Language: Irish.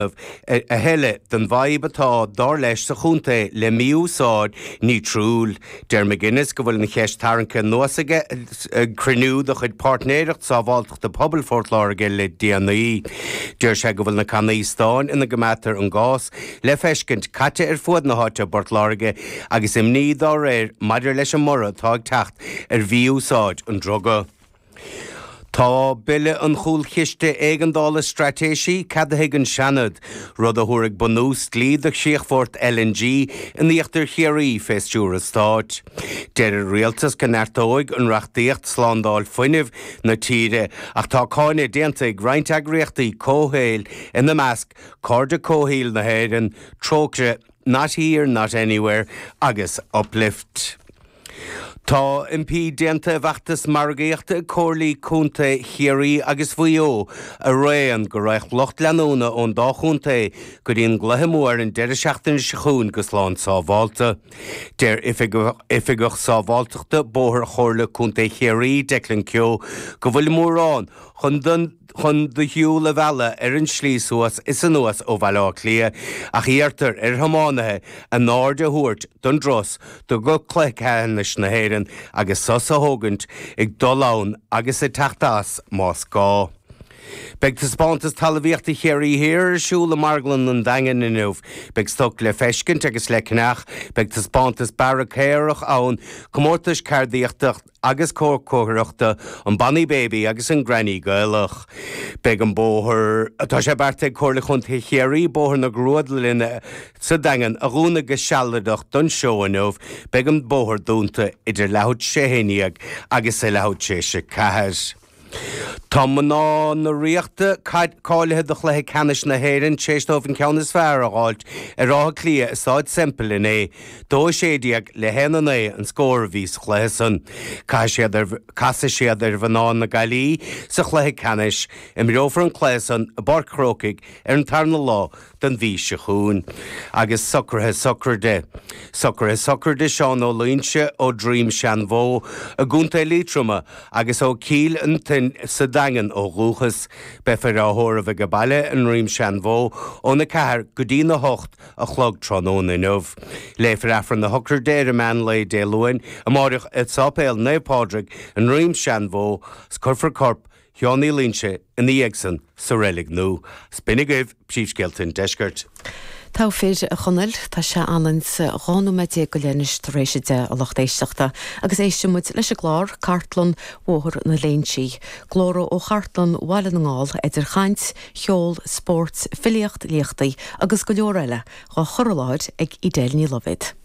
a thuilleadh den bhfadhb atá, dár leis, sa chontae le mí-úsáid nítriúil. Deir McGuinness go bhfuil an cheist tarraingthe anuas aige ag cruinniú de chuid Páirtnéireacht Sábháilteachta Pobail Phort Láirge le déanaí. Deir sé go bhfuil na cannaí stáin ina gcoimeádtar an gás le feiscint caite ar fuaid na háite i bPort Láirge agus imní dá réir maidir leis an mborradh atá ag teacht ar mhí-úsáid an druga. Tá Bille an Chúlchiste Éigeandála Straitéisí ceadaithe ag an Seanad, rud a thabharfaidh bunús dlí do chríochfort LNG in Íochtar Chiarraí fé stiúr an Stáit. Deir an Rialtas go neartóidh an reachtaíocht slándáil fuinnimh na tíre ach tá cáineadh déanta ag roinnt eagraíochtaí comhshaoil, ina measc, Cairde Comhshaoil na hÉireann, Trócaire. Not Here, Not Anywhere agus Uplift. Tá impí déanta i bhfeachtas margaíochta ag Comhairlí Contae Chiarraí agus Mhaigh Eo araon go raghadh lucht leanúna ón dá chontae go dtí an gcluiche mór ar an deireadh seachtaine seo chugainn go slán sábhálta. Deir Oifigeach Sábháilteachta Bóthair Chomhairle Contae Chiarraí, Declan Keogh, go bhfuil mórán chun chun do shiúl a mhealladh ar an slí suas is anuas ó Bhaile Átha Cliath ach iarrtar ar thiománaithe a n-aird a thabhairt don dturas go Cluiche Ceannais na hÉireann agus sos a thógaint ag dul ann agus ag teacht as más gá. Beidh Taispeántas Talamhaíochta Chiarraí Thiar ar siúl i Marglann an Daingin inniu. Beidh stoc le feiscint agus le ceannach. Beidh Taispeántas Bearra Caorach ann, Comórtais Ceardaíochta, agus comórtas Cócaireachta an Bonny Baby agus an Granny Gaelach. Beidh an bóthar, atá sé beartaithe ag Comhairle Chontae Chiarraí Bóthar na Grúdlainne sa Daingean, a dhúnadh go sealadach don seó inniu, beidh an bóthar dúnta idir leathuair tar éis a haon déag agus a leathuair tar éis a ceathair. Tá mná na Ríochta cáilithe do chluiche ceannais na hÉireann tar éis dóibh an ceann is fearr a fháilt ar Áth Cliath i Stáid Semple inné, 2-16 le 1-9 an scór a bhí sa chluiche san. Casfaidh siad ar mhná na Gaillimhe sa chluiche ceannais. Imreofar an cluiche san i bPáirc Chrócaigh ar an tarna lá don mhí seo chugainn agus socraithe sochraide, socraithe sochraide Seán Ó Loingsigh ó Droim Seanbhó i gContae Liatroma agus ó Chill Fhionntain sa Daingean ó dhúchas. Beifear á thórramh ag a bhaile i nDroim Seanbhó ón 4 go dtí'n 8 a chlog tráthnóna inniu. Léifear Aifreann na sochraide ar an meán lae Dé Luain amáireach i Sáipéal Naomh Pádraig i nDroim Seanbhó 's cuirfear corp Thionéalaíonn sé ina dhiaidh san sa reilig nua 's b'in agaibh príomhscéalta an Deiscirt. Togha fir, a Chonaill, tá sé ionann is dhá nóiméad déag go leith anois tar éis a deich, a lucht éisteachta, agus éistfidh muid leis an gclár, Cartlann Bhóthar na Léinsí. Glórtha ó Chartlann Bhaile na nGall, idir chaint, cheol, spóirt, filíocht, léachtaí agus go leor eile, dhá chur i láthair ag Edel Ní Loibhéad.